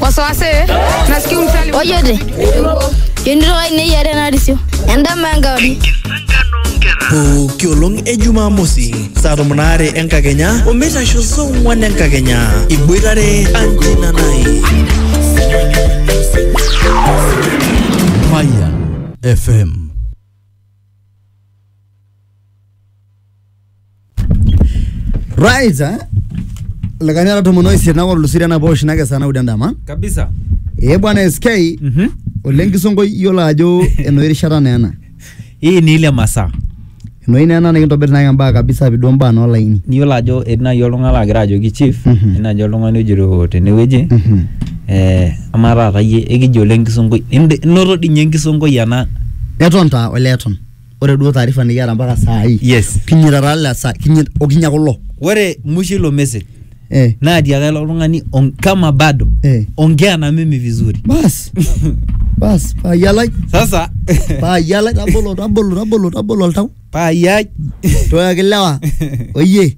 wasawase nasikia umsali ojote yonito ai neyiare narisio endama enkauri pooki olong e jumamosi saa tomon aare enkakenya omeitasho saa ong'wan enkakenya iboitare anjina nai Fire FM. right eh? lekani ara tomon oisiet naa olosiri enapa oshi nake saa naudo endama kabisa ee bwana sk Mhm. oleng kisonkoi iyiolo ajo enoshi rishata naa ena hii ni ile masaa enoshi naa ena nikintobir naake mbaa kabisa piduo mbaa noolaini niyiolo ajo etii naaji oltung'ani laagira ajoki chief Mhm. etii naaji oltung'ani ojito tenewueji Mhm. eh, amaa taata iyie ekijo ole enkisonkoi Inde- inoto dii ninye enkisonkoi ena eton taa ole eton ore duo taarifa nikiata mpaka saa hii yes kinyita taa le saa kinyit okinya kulo ore mwisho ilo message eh naa tiaka ilo tung'ani on- kama bado eh ongea na mimi vizuri bas bas payialai sasa payialai tabolo tabolo tabolo tabolo oltau paayai toyaki lewa oyie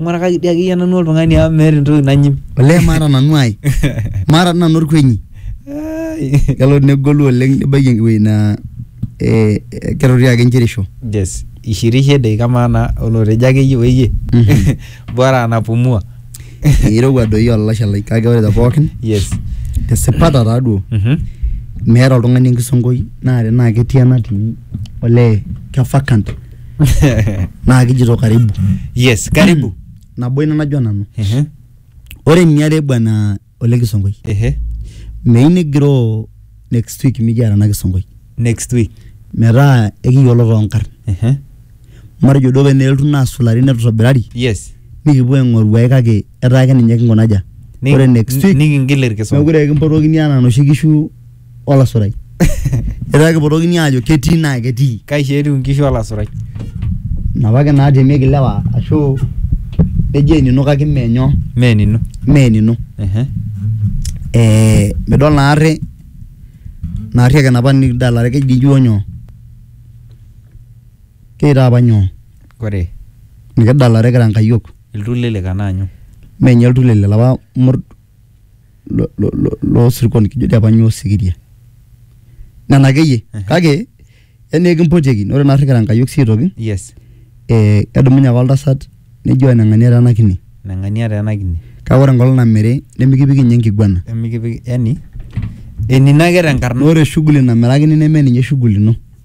Ing'urakaki dii akeyie nanu oltung'ani amu meeta entoki nanyim. Olee maata nanu ai. Maata dii nanu orkuenyi. Ai. Kelo negolu oleng nibaiki ewueji naa eh kerorie ake inchirisho. Yes. Ishirishe edeik amaa naa olotejo akeyie oyie. Mhm. Bora anapumua. Eirowua doi olalashe lai kake ore te pookin Yes. esipata taa duo. Mhm. Meeta oltung'ani enkisonkoi naa tenaa ketii enatii olee ke vacant. naa kijito karibu yes karibu nabo ina najua nanu Ehe, ore eniare bwana ole kisonkoi ehe. meyieu nigiroo next week mikiata ena kisonkoi next week metaa ekiyiolo toonkarn Ehe. matejo duo pee neeltu naasulari netutobirari yes nikipuo aing'oru ae kake etaa ake ninye kinkunaja Ni- ore next week nikingil irkisoma mekure kimpotokini anaa noshi kishu olasurai etaa kipotokini aajo ketii naa ketii kaisho etiu inkishu olasurai inapa ake naatemieki ilewa ashu eji enino kake mee nyoo mee enino mee enino ehe eh, midol naarri naarri ake napa nikidalare keji duo nyoo keita apa nyoo kore nikidalare kira nkayiok iltulelek anaa nyoo menye iltulele lapa mur lo- lo- lo- loosirkon kijo dii apa nyoo osikiria nena akeyie Ehe. kake yani ekimpotieki ore naarri kira Enkai sii aitoki yes eh, kedumunye ake oltasat nejo enang'ania tena kine nang'ania taa ena kine kake ore enkolong namiri nemikipiki ninye enkiguana emikipik yani enino ake tenkarna ore shughuli namirakini neme ninye shughuli ino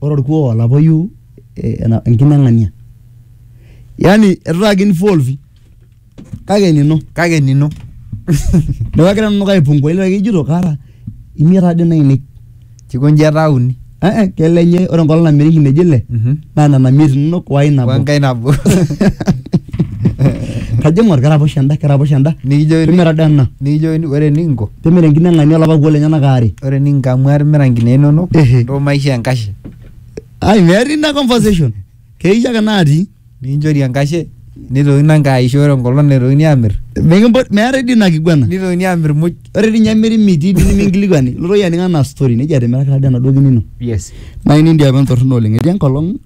Ore olkuoo olapoyu enkine eng'ania. Yaani eitu taata ki involve kake enino. Kake enino. Neeku agira nanu aipungua ilo ake ijito kaata imiet taa dii nainei. Kikoji etaa uni. Ee kelenye ore enkolong' namiri inkineji ile naa nena imiet inono woo ai nabo. Woo enkae nabo. Kajo aing'or keraposho eda keraposho eda. Nikijoki. Kemira doi ena. Nikijokini ore enikinko. Timira enkine e ng'ania o lapa kuoo lenyena aare. Ore ening nkamua timira nkinee inono Ehe. ntoo maishoo enkashe. Ai metii ina conversation. Keisho ake natii. Nikinchori enkashe neitokini enkae aisho ore enkolong naitokini aamir Mikimpot meetae dii ina kiguana. neitokini aamir muj. Ore dii ninye emiri mitii dii niminkilikuani. Ilotu iyie aning anaa story. Neji atimiraka taa dii enaduo kine ino. Yes. Naa ine dii apa entorrono oleng. Etii enkolong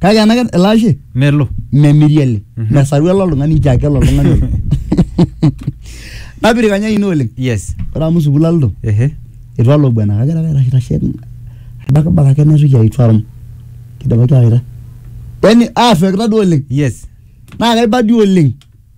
kake ena ke- ele ashe melo memiri ele mesaru ele oltung'ani nchoo ake ele oltung'ani oiro. napirikanya ine oleng yes ore amu sukuul aloito ehe itu alo bwana kagira ake aitashe aibakibak ake naitoki aitu arum kidipaki awaita yani aafekita duo oleng yes naa kaibadi oleng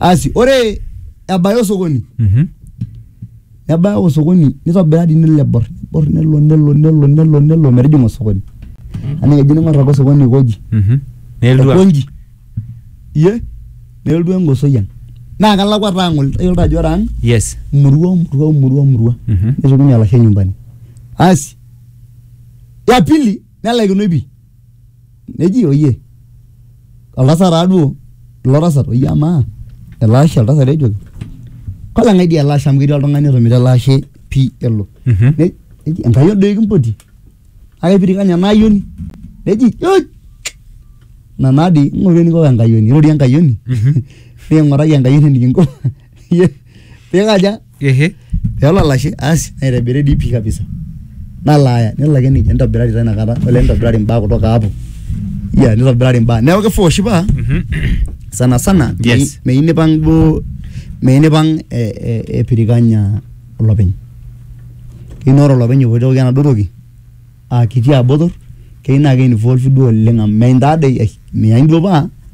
asi ore ebaya osokoni Mhm. nebaya osokoni nitobira dii nelo aibor nibor nelo nelo nelo nelo nelo metijinga osokoni anaa kejo ningor ake osokoni aikoji Mhm. Nelotu a- aikonji iye nelotu engosoi ang naa kelakwa taa ang ol- tayiolo taa ajo ore ang Yes. murua murua murua murua Mhm. neshukunye olashe nyumbani asi ya pili nelaikinoi pi neji oyie oltasat taaduo ilo tasat oyie amaa ele ashe oltasat ejoki koleng'ae dii ele ashe amu ketii oltung'ani otomira ele ashe pii elo Mhm. Ne- neji enkai odoi kimpoti kake pirikanya ena ayioni neji "Oi! ina naa dii ing'oru eniko enkayioni irorie enkayioni Mhm. niking'uraki enkayioni enikinko Ye- pikaja Ehe. peelo olashe asi naitobiri dii pii kabisa nalo aya nelo ake nejia nitobirari taa inakata ole nitobirari imbaa kutoka hapo ya nitobirari imbaa neeku kifaa oshi paa Mhm. sana sana Yes. mei- meyieu nipang duo meyieu nipang eh, eh, epirikanya olopeny keyieu naa ore olopeny epoitoki enaduo toki aa kiti abotor keyieu naa keinvolve duo oleng amu meintadei ai meyain duo paa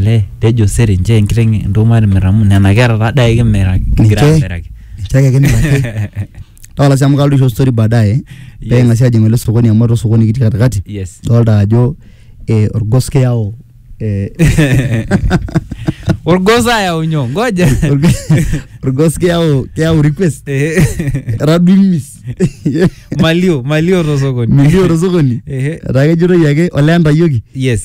Olee tejo sere nchoo enkiteng entoki matimir amu nena kera taa dai kimiraki kigira Ninche- amiraki. ninche ake kimiraki tapala sii amu kalotu aisho story baadaye pee Yes. ing'asi ajing ele sokoni amu atua osokoni kitii katikati Yes. dolta ajo eh, orgos kiyau eh, Orgos ayau nyoo? Ngoja. org- orgos kiyau kiyau request Eh, etadua imis Malio, malio to sokoni. milio tosokoni Ehe. etaa kejitoi ake olee entayioki Yes.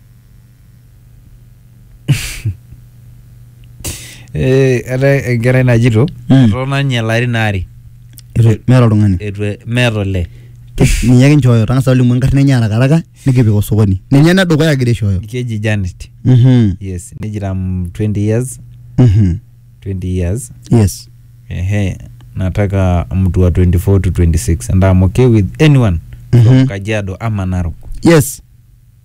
Eh, eetae enkerai najito Mm. etotona ninye ilarin aare Itu- meeta oltung'ani etu e- meeta olee ninye ake nchooyo tang'asa olimu enkarna enye arakaraka nikipik osokoni ninye enedukuya agira aishooyo keji Janet Mhm, yes nejita mm, 20 years mhm. 20 years yes ehe nataka mtu wa 24 to 26 and I'm okay with anyone Mhm. from Kajiado ama Narok yes